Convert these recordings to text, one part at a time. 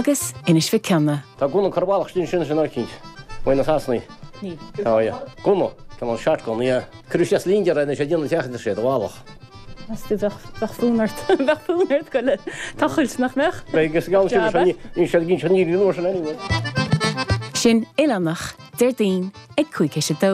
agus Inis Mhic Cionnaith. Tá Gunna Corrbhálach sin sin sin áicint. Maigh na Sasanaigh. Ní. Tá, ia. Gunna. Tá an shart gun, ia. Cuireadh sé as lín dearg anois a dtí an teach idir sé do bhálach. As do bheadh bheadh fonn ort. Bheadh fonn ort a ghoil ag tochailt, nach mbeadh? Beidh is gan sin Jabba. sin níl sé gin sin níl an uair sin anyway. Sin oileánach Déardaoin ag cúig théis a dó.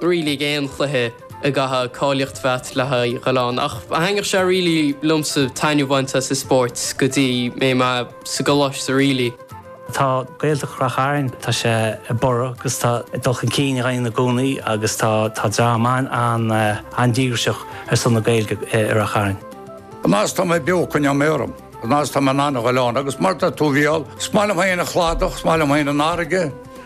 really aon chluiche a gcaithfeá cáilíocht a bheith a'd le haghaidh a ghoil ann ach tháinig sé really liomsa taitneamh a bhaint as an spórt go dtí mé mé sa gcoláiste really. Tá Gaeltacht Rath Chairn, tá sé ag borradh agus tá dul chun cinn dá dhéanamh i gcónaí agus tá tá dream ann an-díograiseach ar son na Gaeilge i Rath Chairn. An fhad is atá mé beo coinneoidh mé orm. An fhad is atá mé in ann a ghoil ann agus mar tá tú bhuel, is maith liom féin an chladach, is maith liom féin an fharraige,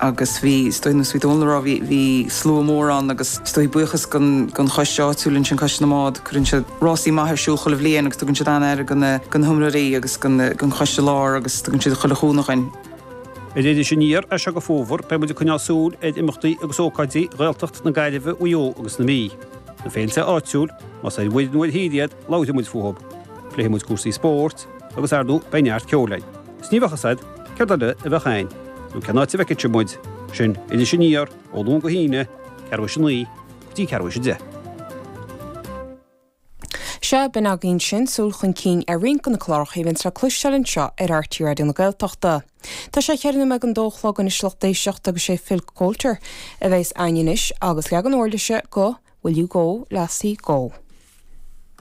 agus bhí, is dóigh, nós a bhí Dónall ag rá, bhí, bhí slua mór ann agus is dóigh, buíochas don, don choiste áitiúil ansin, Coiste na mBád, cuireann siad rásaí maith ar siúl chuile bhliain agus tugann siad an-aire do na, do na hiomróirí agus don, don Choiste Lár agus tugann siad chuile chúnamh dhuinn. Ar Iris Aniar, as seo go Fómhar, beidh muid ag coinneáil súil ar imeachtaí agus ócáidí Ghaeltacht na Gaillimhe, Mhaigh Eo agus na Mí. Na féilte áitiúil, más ar mhuir nó ar thír iad, labhróidh muid fúthu. Pléifidh muid cúrsaí spóirt agus, ar ndóigh, beidh neart ceoil againn. 's ní bheadh fhios a'd céard eile a bheadh a'inn, nó cén áit a bhfeicfeadh sé muid, sin Iris Aniar, ó Luan go hAoine, ceathrú théis a naoi go dtí ceathrú théis a deich. Sea, b'in againn sin, súil chun cinn ar roinnt de na cláracha a bhíonns le cloisteáil anseo ar RTÉ Raidió na Gaeltachta. Tá sé cheithre nóiméad don dó a chlog anois lucht éisteachta agus sé Phil Coulter a bheidhs a'inn anois agus leagan uirlise de Will you go, lassie, go?